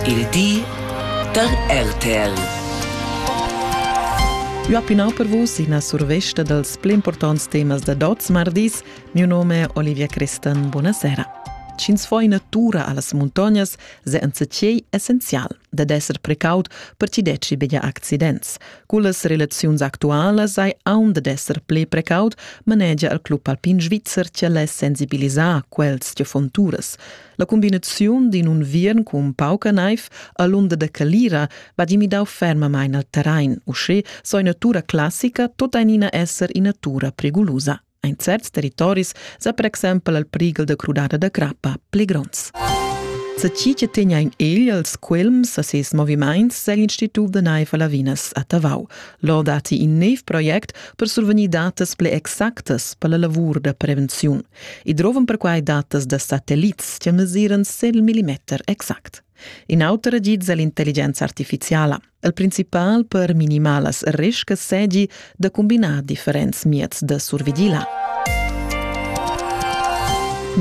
Il di da RTL. L'opinau per vus ina survesta dals pli importants temas da Dots mardis. Mio nome è Olivia Crestan. Buonasera. Cins fo in natura a las muntognas se enza tgei essenzial. dad esser precaut per chi detschi be accidents. Cullas relaziuns actualas sai aun dad esser ple precaut, manegia il club alpin svizzer che less sensibilisar quels che fon turas. La combinaziun d'in unviern cun pauca naiv a l'unda da Calira va di midau fermamain al terrain, uschè so ina natura classica tota in ina esser ina natura prigulusa. In certs territoris sa per exempel al prighel da crudada da crappa pli gronds. Sa chi che tegna in egl als quilms a ses movimaints segl Institut da naiv a Lavinas a Tavau. Lò dati in neiv project per survenir datas ple exactas per la lavur da prevenziun. I drovan perquai datas da satellits che mesiran 100 mm exact. In auter agid è l'intelligenza artificiala. El principal per minimar las riscas segi da combinar differents mieds da survigila.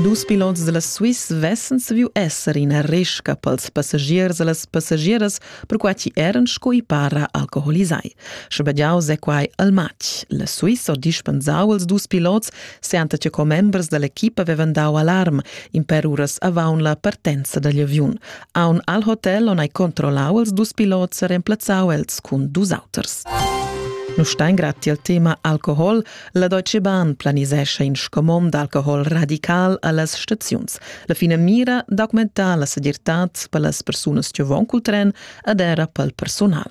Dus pilots della Swiss vessen saviu esser ina risca pels passagiers e las passagieras, perquai chi eran sco i para alcoholisai. Schabegiau se quai al match. La Swiss ho dispensau als dus pilots, seanta che commembers dall'equipa avevan dau alarm, in per uras avaun la partenza dagli aviun. Aun al hotel on ei controllau els dus pilots e remplazzau els cun dus auters. Nu stein grad tiel tema alcohol, la Deutsche Bahn planisescha in scomom d'alcohol radical allas staziuns. La fine mira d'augmentar la segirtad per las persunas che von col tren ad era pel personal.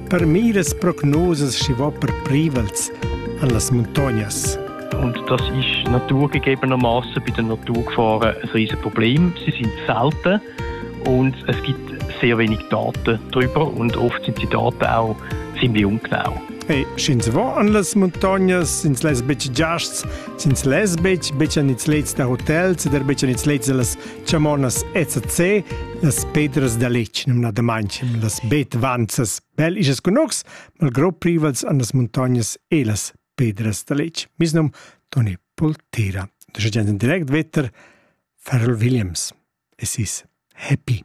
Per miras prognosas schi va per privels an las muntognas. Und das ist naturgegebenermaßen bei der Naturgefahren ein riesen Problem. Sie sind selten und es gibt sehr wenig Daten darüber und oft sind die Daten auch ziemlich ungenau. Hey, sch'ins va an las muntognas, ins les betg giasts, ins les betg, betg an ins lets da hotels, der betg an ins lets da las Chamonas ECC, las pedras da letg numnadamain, las betvanzas bel isas cunocs, malgró privals an las montagnas e las pedras da letg. Mis nom Toni Poltera. Da gent in direct vetter Farrell Williams. Es is happy.